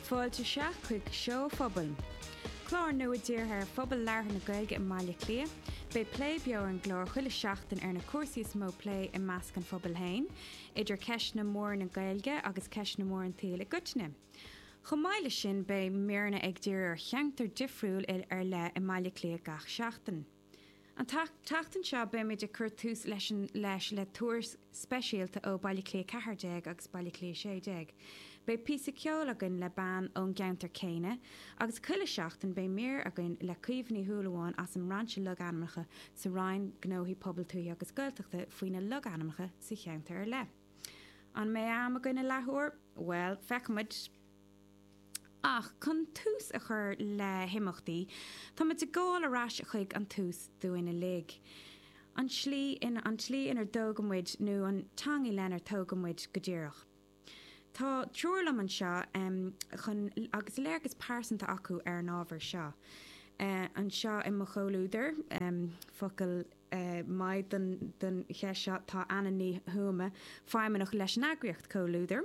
Fáilte isteach chuig Seó Phobal, clár nua dírithe ar phobal labhartha na Gaeilge i mBaile Cliath. Beidh plé beo ar an gclár chuile sheachtain ar na cúrsaí is mó plé i measc an phobail féin, idir ceisteanna móra na Gaeilge agus ceisteanna móra an tsaoil i gcoitinne. Chomh maith leis sin beidh míreanna ag díriú ar cheantar difriúil ar leith i mBaile Cliath gach seachtain. An tseachtain seo beimid ag cur tús leis le tuairisc speisialta ó Bhaile Cliath 14 agus Baile Cliath 16. Beidh píosa ceoil againn le bean ón gceantar céanna agus chuile sheachtain beidh mír againn le Caoimhe Ní Shúilleabháin as an mBrainse Logainmneacha sa Roinn Gnóthaí Pobail Tuaithe agus Gaeltachta faoi na logainmneacha sa cheantar ar leith. An mbeidh am againn i leath uair? Bhuel, feicfimid! Ach chun tús a chur le himeachtaí, táimid ag gabháil ar ais chuig an tús dúinn uilig. An tslí inar dtógadh muid, nó an teanga lenar tógadh muid go díreach. Tá triúr liom anseo chun, agus léargas pearsanta acu ar an ábhar seo. Anseo i mo chomhluadar, focal maith don cheist seo, tá Anna Ní Thuama, feidhmeannach leis an eagraíocht Comhluadar.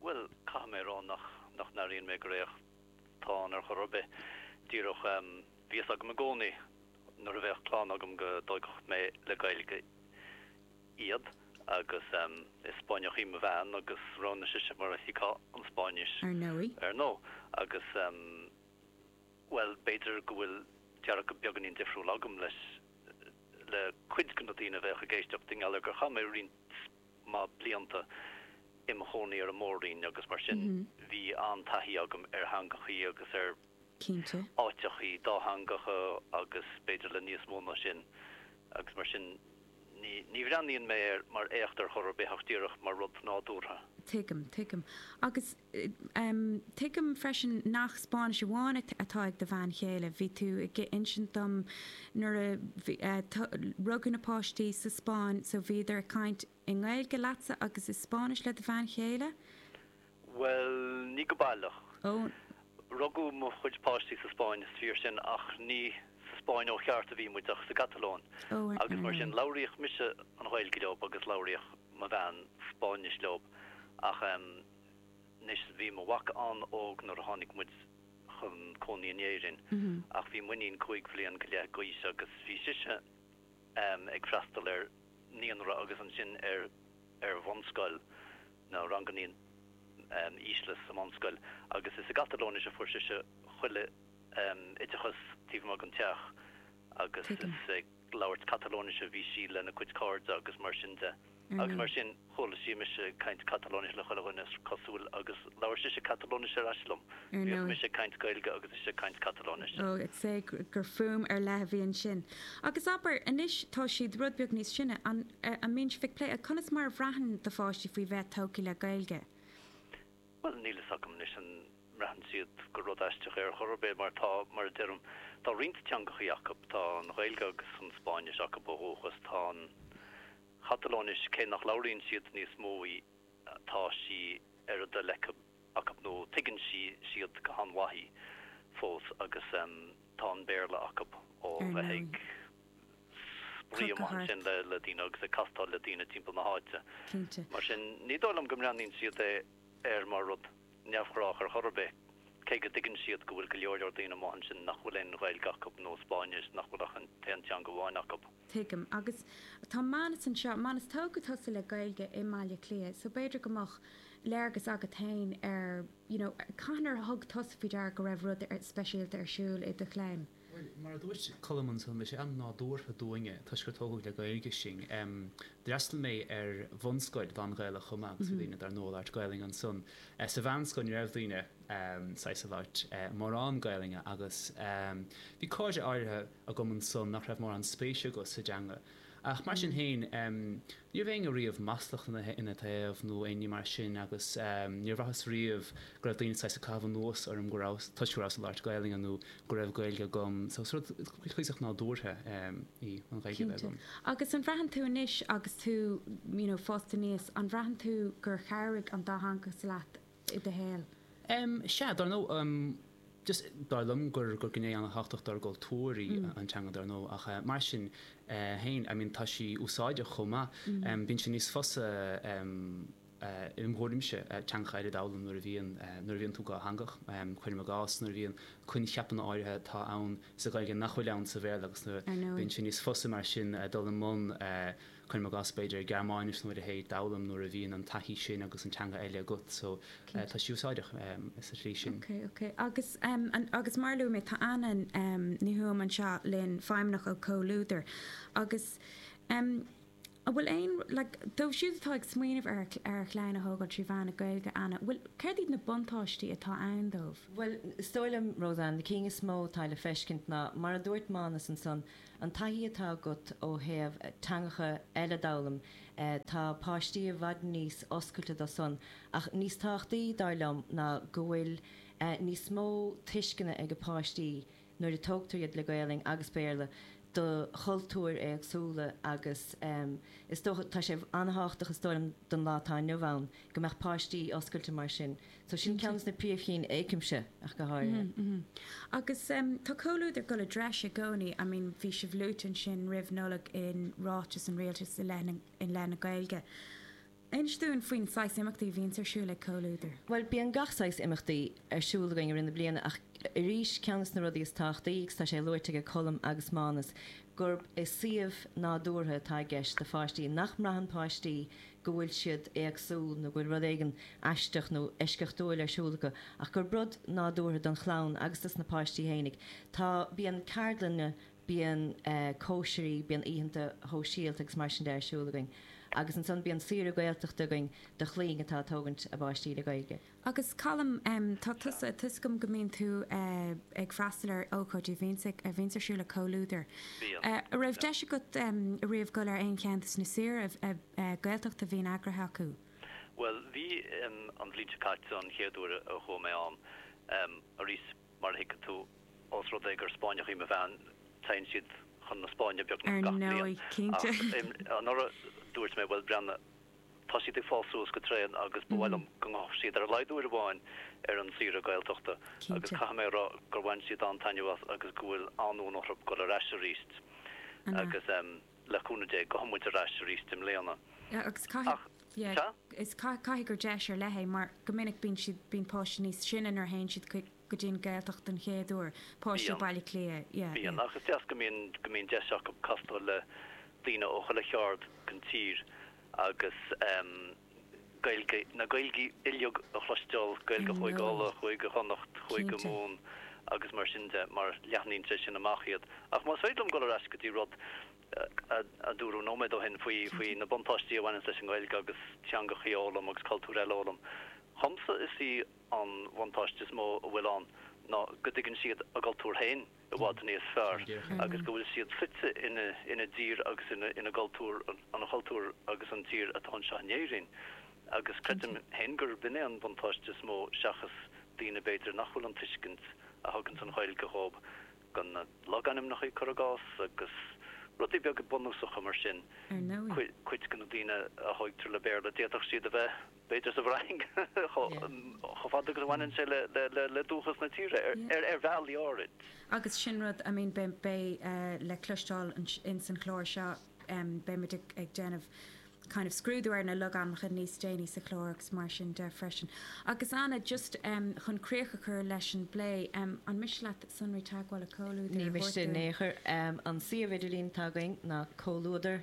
Bhuel, caithfidh mé a rá nach n-airíonn mé gur éacht atá ann ar chor ar bith. Díreach bhí a fhios agam i gcónaí nuair a bheadh clann agam go dtógfadh mé le Gaeilge iad agus is Spáinneach í mo bhean agus roghnaigh sise mar a chéad an Spáinnis, ar ndóigh. Agus, bhuel, b'fhéidir go bhfuil dearcadh beagáinín difriúil agam leis le cuid de na daoine a bheadh ag éisteacht i ngeall ar gur chaith mé roinnt maith blianta im chónaí ar an Mór-roinn agus mar sin bhí an-taithí agam ar theangachaí agus ar áiteachaí dátheangacha agus b'fhéidir le níos mó ná sin agus mar sin ní bhreathnaíonn mé air mar éacht ar chor ar bith ach díreach mar rud nádúrtha. Tuigim freisin nach Spáinnis amháin atá ag do bhean chéile. Bhí tú ag insint dom nuair a rugadh na páistí sa Spáinn so bhíodar ag caint i nGaeilge leatsa agus i Spáinnis le do bhean chéile? Bhuel, ní go baileach. Rugadh mo chuid páistí sa Spáinn, is fíor sin, ach ní sa Spáinn ó cheart a bhí muid ach sa gCatalóin agus mar sin labhraíodh mise an Ghaeilge leo agus labhraíodh mo bhean, Spáinnis leob, ach, em, anois, bhí mo mhac an-óg nuair a tháinig muid chun cónaí in Éirinn ach bhí m'iníon cúig bhliain go leith d'aois agus bhí sise, em, ag freastal ar naíonra agus ansin ar, ar bhunscoil, na ranganna, em, ísle sa mbunscoil agus is i gCatalóinis a fuair sise chuile, em, oideachas taobh amuigh den teach. agus is ag labhairt Catalóinis a bhí sí lena cuid cairde agus mar sin de. Agus mar sin, chuala sí mise ag caint Catalóinis le chuile dhuine, is cosúil, agus labhair sise Catalóinis ar ais liom. Bhíodh mise ag caint Gaeilge agus ise ag caint Catalóinis. Ó, is é gur fuaim ar leith a bhí ansin. Agus abair, anois tá siad rud beag níos sine, an mbíonn sibh ag plé conas mar a bhraitheann do pháistí faoi bheith togtha le Gaeilge? Bhuel, níl fhios agam anois an mbraitheann siad gur rud aisteach é ar chor ar bith, mar tá, mar a deirim, tá roinnt teangachaí acu, tá an Ghaeilge agus an Spáinnis acu ó dhúchas, tá an Chatalóinis, cé nach labhraíonn siad níos mó í, tá sí ar a dtoil acu nó tuigeann sí, siad, go han-mhaith í fós agus, em, tá an Béarla acu ó bheith ag. spraoi amuigh ansin le daoine agus ag castáil le daoine timpeall na háite. Mar sin, ní dóigh liom go mbreathnaíonn siad air mar rud neamhghrách ar chor ar bith, cé go dtuigeann siad go bhfuil go leor leor daoine amuigh ansin nach bhfuil aon Ghaeilge acu nó Spáinnis, nach bhfuil ach an t-aon teanga amháin acu. Tuigim. Agus tá Manus anseo. Manus, tógadh tusa le Gaeilge i mBaile Átha Cliath, so b'fhéidir go mbeadh léargas agat féin ar, you know, cathain ar thug tusa faoi deara go raibh rud speisialta ar siúl i do chlann? Bhuel, mar a dúirt Colm ansan, bhí sé an-nádúrtha dúinne, toisc gur tógadh le Gaeilge sinn. D'fhreastal mé ar bhunscoil lán-Ghaelach chomh maith agus bhí daoine dar ndóigh ag labhairt Gaelainn ansan. Sa mheánscoil ní raibh daoine saghas ag labhairt mórán Gaelainne agus bhí cairde áirithe agam ansan nach raibh mórán spéise acu sa dteanga. Ach mar sin féin, ní raibh éinne riamh maslach ina taobh nó aon ní mar sin agus níor bhraitheas riamh go raibh daoine saghas ag caitheamh anuas orm go raibh, toisc go rabhas ag labhairt Gaelainne nó go raibh Gaeilge agam. So is rud cuíosach nádúrtha í an Ghaeilge a bheith agam. Cinnte. Agus an mbraitheann tú anois agus tú, you know, fásta aníos, an mbraitheann tú gur chabhraigh an dátheangachas leat i do shaol? Em, sea, dar ndóigh, em, just, dar liom gur, gur gné an-tábhachtach dár gcultúr í an teanga, dar ndóigh, ach eh, mar sin eh féin, I mean, tá sí úsáideach chomh maith. Em, bíonn sé níos fusa em, eh, im' thuairimse, eh teangacha eile a dh'fhoghlaim nuair a bhíonn eh, nuair a bhíonn tú dhátheangach. Em, cuirim i gcás, nuair a bhíonn coincheapanna áirithe atá ann sa Ghaeilge nach bhfuil ann sa Bhéarla agus nuair a, bíonn sé níos fusa mar sin dul i mbun eh, Cuirim i gcás, b'fhéidir, Gearmáinis nó a leithéid a fhoghlaim nuair a bhíonn an taithí sin agus an teanga eile agat so tá sí úsáideach sa tslí sin. Okay, okay. Agus, agus mar a luaigh mé, tá Anna Ní Thuama anseo linn, feidhmeannach ó Comhluadar agus an bhfuil aon, like, dóibh siúd atá ag smaoineamh ar, ar a gclann a thógáil trí mheán na Gaeilge, Anna, bhfuil, céard iad na buntáistí atá ann dóibh? Bhuel, is dóigh liom, Roseann, na cinn is mó atá le feiscint ná, mar a dúirt Mánus ansan, An taithí atá agat ó thaobh teangacha eile d'fhoghlaim, tá páistí i bhfad níos oscailte dó san, ach níos tábhachtaí, dar liom, ná go bhfuil níos mó tuisceana ag páistí, nuair a tógtar iad le Gaelainn agus Béarla, do chultúir éagsúla agus is dócha, tá sé an-tábhachtach is dóigh liom don lá atá inniu ann, go mbeadh páistí oscailte mar sin. So sin ceann des na príomhchinn a chímse ach go háirithe. Agus tá Comhluadar ag dul i dtreis i gcónaí. I mean bhí sibh luaite ansin roimh Nollaig in ráiteas an Rialtais i leith na Gaeilge. Inis dúinn faoin saghas imeachtaí a bhíonns ar siúl ag Comhluadar. Bhuel bíonn gach saghas imeachtaí ar siúl againn i rith na bliana ach arís ceann des na rudaí is tábhachtaí, agus tá sé labhartha aige Colm agus Mánus, gurb é suíomh nádúrtha atá i gceist do pháistí, nach mbraitheann páistí go bhfuil siad éagsúil nó go bhfuil rud éigin aisteach nó eisceachtúil ar siúl acu, ach gurb rud nádúrtha don chlann agus dos na páistí fhéinig atá, bíonn ceardlanna, bíonn cóisirí, bíonn oícheanta shóisialta agus mar sin de ar siúl againn. Agus ansan bíonn saoire Gaeltachta againn do chlainn atá ag tógaint a bpáistí le Gaeilge. Agus Colm, tá tusa, tá 'fhios agam go mbíonn tú ag freastal ar ócáidí a bhíonns ar siúl ag Comhluadar. Bíonn. An raibh deis agat riamh dul ar aon cheann des na saoire Gaeltachta a bhíonn eagraithe acu? Bhuel, bhí an bhliain seo caite an chéad uair a chuaigh mé ann. Arís, mar a thuigfidh tú, os rud é gur Spáinneach í mo bhean, téann siad chun na Spáinne beagnach gach bliain. Ar ndóigh, cinnte. Ach anuraidh, dúirt mé, bhuel, breathnaigh, Tá siad ag fás suas go tréan agus ba mhaith liom go ngabhfadh siad ar a laghad uair amháin ar an tsaoire Gaeltachta agus caithfidh mé a rá gur bhain siad an-taitneamh as agus go bhfuil an-fhonn orthu dul ar ais arís agus le cúnamh Dé gabhfaidh muid ar ais arís i mbliana. Agus caithfidh gur deis ar leith é mar go minic bíonn páistí níos sine nuair a théann siad chuig go dtí an Ghaeltacht den chéad uair, páistí Bíonn. Bhaile Átha Cliath, yeah, Bíonn, yeah. ach is deas go mbíonn, go mbíonn deis acu casadh le daoine ó chuile cheard den tír agus ehm Gaeilge, na Gaeilgí uilig a chloisteáil, Gaeilge I Chúige know. Uladh, Chúige Chonnacht, Chúige Cinnte. Mumhan agus mar sin de, mar leathnaíonn sé sin amach iad. Ach más féidir liom dul ar ais go dtí rud a, a dúradh nóiméad ó shin faoi, faoi Cinnte. na buntáistí a bhaineanns leis an Ghaeilge agus teangacha a fhoghlaim agus cultúir eile a fhoghlaim, dhomsa is í, An buntáiste is mó a bhfuil ann ná go dtuigeann siad a gcultúr féin i bhfad níos fearr agus go bhfuil siad fite ina dtír agus ina gcultúr, an cultúr agus an tír atá anseo in Éirinn. Agus creidim féin gurb in é an buntáiste is mó seachas daoine b'fhéidir nach bhfuil an tuiscint a thuganns an Ghaeilge dhóibh go na logainmneacha logainmneacha, cur i gcás, agus rudaí beaga bunúsacha mar sin. Ar ndóigh, cuid de na daoine a thóigtear le Béarla d'fhéadfadh siad a bheith. b'fhéidir sa bhFrainc, chomh fada agus a bhaineann sé le dúchas na tíre, ar bhealaí áirid. Agus sin rud, I mean, beidh le cloisteáil in san chlár seo, beidh muid ag déanamh kind of scrúdú ar na logainmneacha níos déanaí sa chlár agus mar sin de freisin. Agus Anna, just chun críoch a chur leis an bplé, an miste leat sonraí teagmhála Comhluadair a thabhairt dúinn? Ní miste in aon chor. An suíomh idirlín atá againn ná Comhluadar.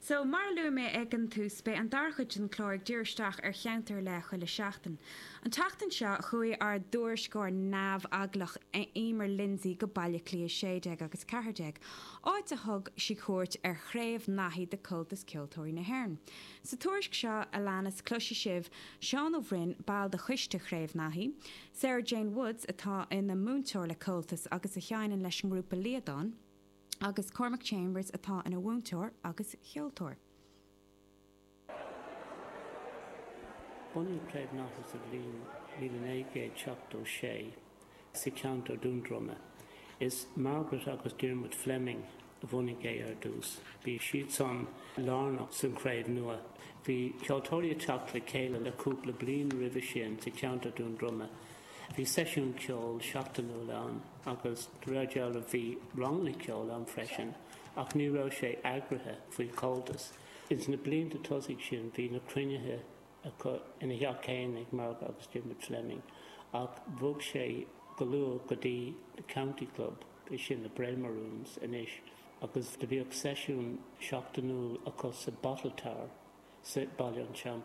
So, mar a luaigh mé ag an tús, beidh an dara cuid den chlár ag díriú isteach ar cheantar ar leith chuile sheachtain. An tseachtain seo, chuaigh ár dtuairisceoir neamheaglach Eimear Lindsay go Baile Átha Cliath 16 agus 14, áit a thug sí cuairt ar Chraobh Naithí de Comhaltas Ceoltóirí na hÉireann. Sa tuairisc seo a leanas, cloisfidh sibh Seán Ó Broin, ball de choiste Chraobh Naithí, Sarah-Jane Woods, atá ina múinteoir le Comhaltas agus a sheineann leis an ngrúpa Liadán, agus Cormac Chambers atá ina mhúinteoir agus ceoltóir. Bunaíodh Craobh Naithí sa bhliain 1976 sa cheantar Dhún Droma. Is Margaret agus Diarmuid Fleming a bhunaigh é ar dtús. Bhí siadsan lárnach sa chraobh nua. Bhí ceoltóirí ag teacht le chéile le cúpla bliain roimhe sin sa cheantar Dhún Droma Bhí seisiún ceoil seachtainiúil ann agus de réir dealraimh bhí ranganna ceoil ann freisin ach ní raibh sé eagraithe faoi Comhaltas. Ins na blianta tosaigh sin bhí na cruinnithe acu ina theach fhéin ag Marg agus Diarmuid Fleming ach bhog sé go luath go dtí The County Club, 'sé sin na Braemar Rooms anois, agus do bhíodh seisiún seachtainiúil acu sa Bottle Tower sa Baile an Teampaill.